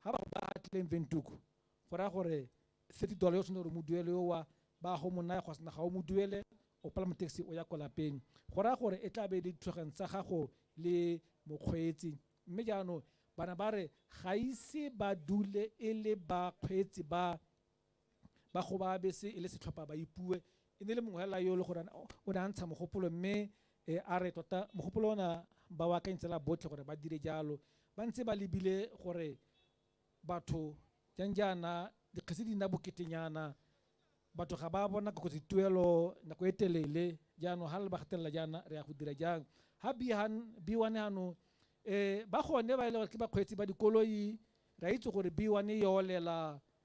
ga ba ba atileng ventuku go raya gore thirty dollar yo tshwanetse gore mo duele yo wa ba go mo naya gosna ga o mo duele o palama taxi o ya kwa lapeng go raya gore e tla be le dithulaganyo tsa gago le mokgweetsi mme jaanong bana ba re ga ise ba dule e le bakgweetsi ba ba gobaa bese e le setlhopha ba ipuwe e ne le mongwe fela yo e le gore o ne a ntsha mogopolo mme um a re tota mogopolo ona ba o akanyetsela botlhe gore ba dire jalo ba ntse ba lebile gore batho jang jaana dikgetse di nna boketenyana batho ga ba bona kgotsa dituelo nako e telele jaanong ga le ba gatelela jaana re ya go dira jang ga b1 ano um ba gone ba e le gore ke bakgweetsi ba dikoloi re a itse gore b1 e olela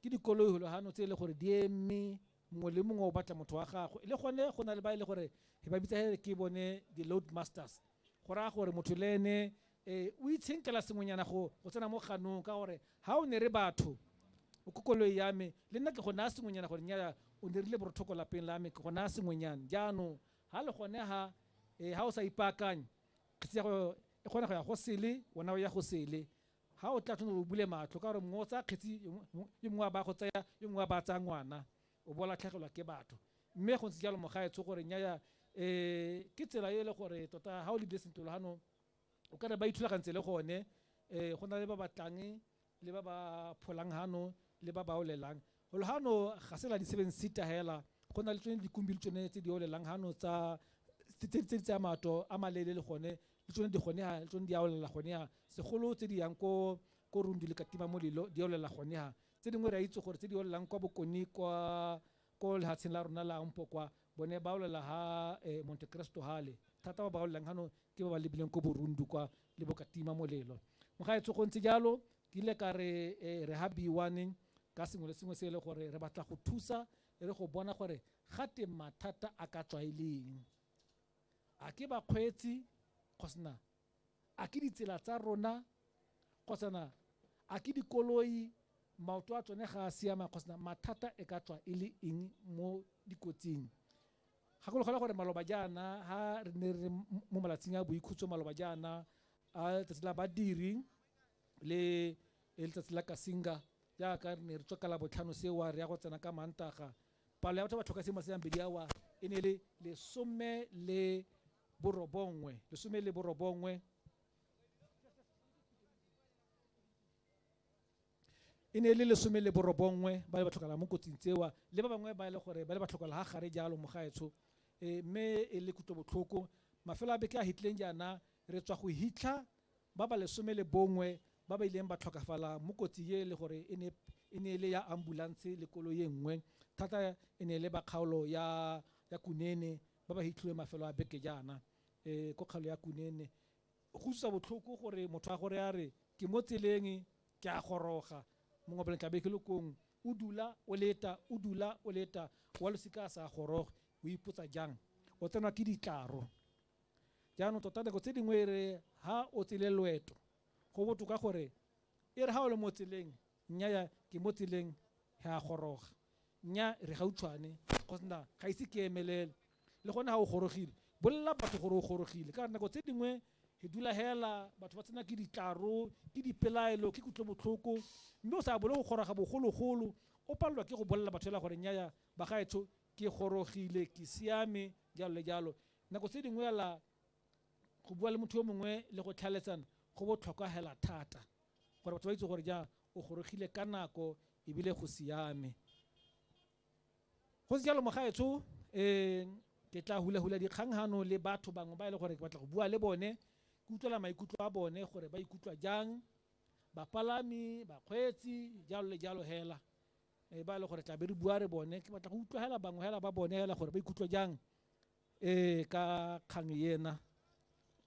Ke dikoloihulahano tse e le gore di eme, mongwe le mongwe o batla motho wa gagwe. Le gone go na le ba e le gore he ba bitsa he re ke bone di-load masters, go raya gore motho le ene o itshenkela sengwenyana go tsena mo ganong ka gore ha o ne re batho o ko koloi ya me le nna ke go naya sengwenyana gore nnyaya o ne rile borothoko lapeng la me ke go naya sengwenyane. Jaanong ha le gone ha ha o sa ipaakanye kgetsi ya go e kgona go ya go sele wena o ya go sele, Ga o tla tshwanetse o bule matlho ka gore mongwe o tsaya kgetsi e mongwe a ba go tsaya e mongwe a ba tsaya ngwana o bo latlhegelwa ke batho mme go ntse jalo mogaetsho gore nyaya um ke tsela e le gore tota ga o lebile sentle logano o ka re ba ithulagantse le gone um go na le ba ba tlang le ba ba pholang gano le ba ba olelang Golo gano ga se la di-seven seater hela go na le tsone dikumbi le tsone tse di olelang gano tsa tse di tse di tsaya maoto a maleele le gone le tsone di gone ha le tsone di a olela gone ha segolo tse di yang ko ko rundu le katima molelo di olela gone ha tse dingwe re a itse gore tse di olelang kwa bokone kwa ko lehatsheng la rona la mpo kwa bone ba olela ha eh, monte cristo hale thata ba ba olelang gano ke ba ba lebileng ko borundu kwa le bokatima molelo mogaetsho go ntse jalo Ke ile ka re, Ee, re ha biwane ka sengwe le sengwe se e le gore re batla go thusa e le go bona gore gate mathata a ka tswa e le eng. A ke bakgweetsi kgosana a ke ditsela tsa rona kgosana a ke dikoloi maoto a tsone ga a siama kgosana mathata e ka tswa e le eng mo dikotsing. Gakologela gore maloba jaana ha re ne re mo malatsing a boikhutso maloba jaana a letsatsi la badiri, le e letsatsi la kasinga jaaka re ne re tswa ka labotlhano sewa re ya go tsena ka mantaga palo ya batho ba tlhoka sengwe senabedi awa e ne e le lesome le borobongwe lesome le borobongwe e ne e le lesome le borobongwe ba le ba tlhokala mo kotsing tsewa le ba bangwe ba e le gore ba le ba tlhokala ga gare jalo mo gaetsho um mme e le kutlobotlhoko mafelo a beke a hitleng jaana re tswa go hitlha Ba ba lesome le bongwe ba ba ileng ba tlhokafala mo kotsi ye le gore e ne e ne e le ya ambulanse le koloi e nngwe, thata e ne e le ba kgaolo ya ya Kunene ba ba hitlhiwe mafelo a beke jaana e ko kgaolo ya Kunene. Go utlwisa botlhoko gore motho a gore a re ke mo tseleng ke a goroga mongwe pele tlabe ke le kong o dula o leta o dula o leta wa losika a sa goroge o ipotsa jang o tsenwa ke ditlaro. jaanong tota nako tse dingwe e re ha o tsele loeto go botoka gore e re ha o le mo tseleng nnyaya ke mo tseleng he a goroga nya re gautshwane go sena ga ise ke emelele le gone ga o gorogile bolelela batho gore o gorogile ka nako tse dingwe e dula hela batho ba tsena ke ditlaro ke dipelaelo ke kutlobotlhoko mme o sa bole go goroga bogologolo o palelwa ke go bolelela batho fela gore nyaya bagaetsho ke gorogile ke siame jalo le jalo Nako tse dingwe ala go bua le motho yo mongwe le go tlhaeletsana go botlhokwa hela thata gore batho ba itse gore ja o gorogile ka nako ebile go siame. Go se jalo mogaetsho um ke tla hulahula dikgang hano le batho bangwe ba e le gore ke batla go bua le bone ke utlwela maikutlo a bone gore ba ikutlwa jang bapalami bakgweetsi jalo le jalo hela e ba le gore tla be re bua re bone ke batla go utlwa hela bangwe hela ba bone hela gore ba ikutlwa jang um ka kgang ena